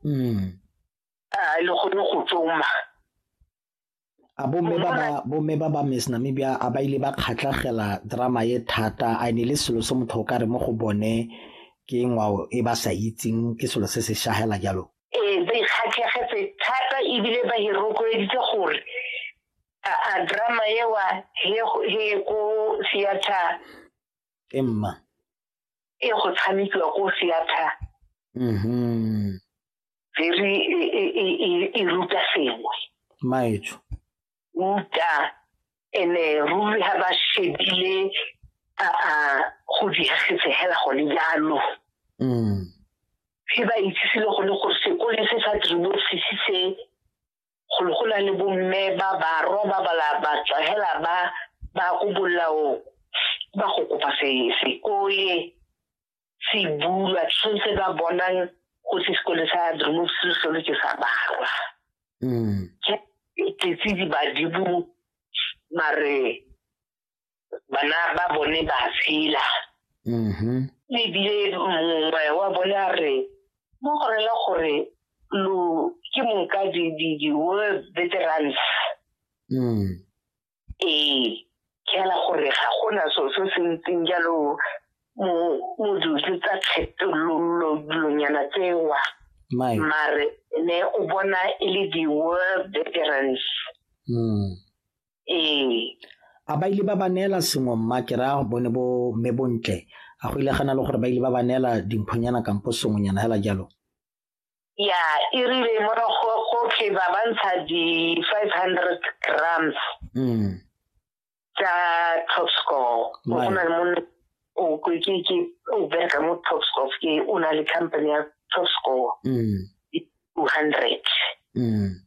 mm. a le gone go tsoma a bomme ba ba bomme ba ba miss namibia a ba ile ba kgatlhagela drama ye thata a ne le selo se motho o ka re mo go bone ke ngwao e ba sa itseng ke selo se se shagela jalo ee ba ikgatlhegetse thata ebile ba e rotloeditse gore a drama ewa he ko theater e mma e go tshamekiwa ko theater mm-hmm. very e, e, e, e ruta sengwe maetsho ruta ene ruri ha ba shebile a go diagetse hela gone jalo mm. he ba itsise le gone gore sekole se sa tribosisi se golo go na le bomme ba barwa ba bala ba tswa hela ba ba ko bolao ba go kopa se sekole se bulwa tshwanetse ba bonang go se sekole sa drumop se solo ke sa barwa mm. ke tletse di badibu mare bana ba bone ba tshela mm-hmm. ebile mongwe wa bone a re mo go rela gore lo ke mong ka di-world veterans mm. ee ke ala gore ga gona so se se ntseng jalo mo modusi tsa kgetololonyana tsewa mare ne o bona e le di-world veterans mm. ee a ba ile ba ba neela sengwe mma ke raya bone bo mme bontle a go ile gana le gore ba ile ba ba neela dimphonyana kampo sengwenyana fela jalo ya e rile morago gotlhe ba ba ntsha di-five hundred grams mm. tsa top score go na le monna o ke ke o bereka mo top score ke o na le company ya top score mm. two hundred mm.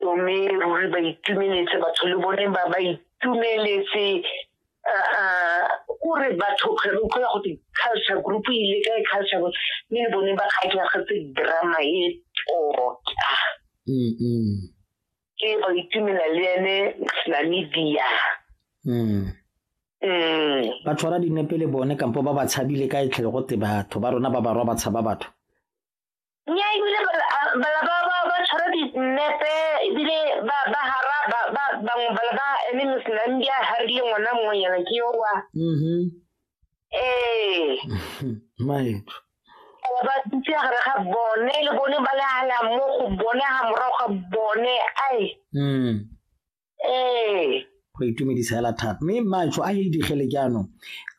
mme ruri ba itumeletse batho le bone ba ba itumeletse o re batho kgwere utlwa go te culture group e ile ka e culture group mme le bone ba kgatlhagetse drama e tota ke ba itumela le ene namibia ba tshwara dinepe le bone kampo ba ba tshabile ka e tlhele go te batho ba rona ba barwa ba tshaba batho nya ebile bala ba ba ba tshwara dinepe ebile ba ba hara ba ba bangwe bala ba eme mosenang di a harile ngwana mongwe yana ke yo wa mm-hmm. ee maetso ba dutse gare ga bone le bone ba le hala mo go bone ga morago ga bone ai mm. ee go itumedisa hela thata mme matsho a edigele jaanong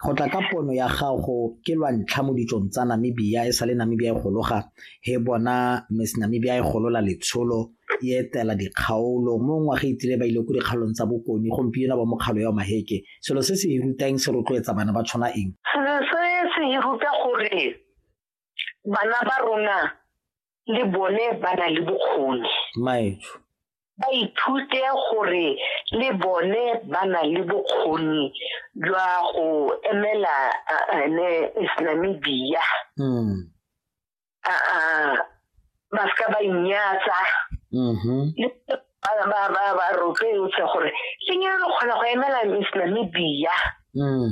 go tla ka pono ya gago ke lwa ntlha mo ditsong tsa namibia e sa le namibia e gologa he bona miss namibia e golola letsholo e etela dikgaolo mo ngwaga itile ba ile ko dikgaolong tsa bokone gompieno ba mokgalo ya maheke selo se se e rutang se rotloetsa bana ba tshwana eng selo se se e ruta gore bana ba rona le bone ba na le bokgoni maetsho ba ithute gore le bone ba na le bokgoni jwa go emela ene islamibia mm. ba seka ba inyatsa mm-hmm. ba rotloetse gore le nyalo kgona go emela islamibia mm.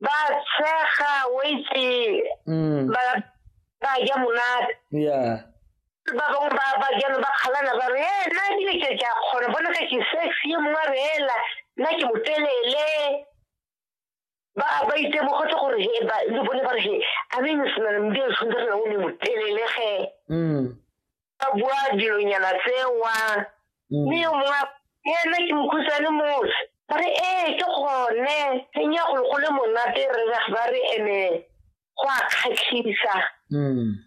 ba tshega o itse mm. ba ba ja monate yeah ba bangwe ba ba jana ba kgalana ba re ee nna ebile ke ke a kgona bona ka ke sexy ye mongwe a re ela nna ke motelele ba ba itemogetse gore he ba le bone ba re he a me ne senana mme a tshwanetse re na o ne motelele ge mm. a bua dilonyana tsewa mm. mme yo mongwe ena ke mokhutswane mose ba re ee ke gone teng ya golo go le monate re ba re ene go a kgatlhisa mm.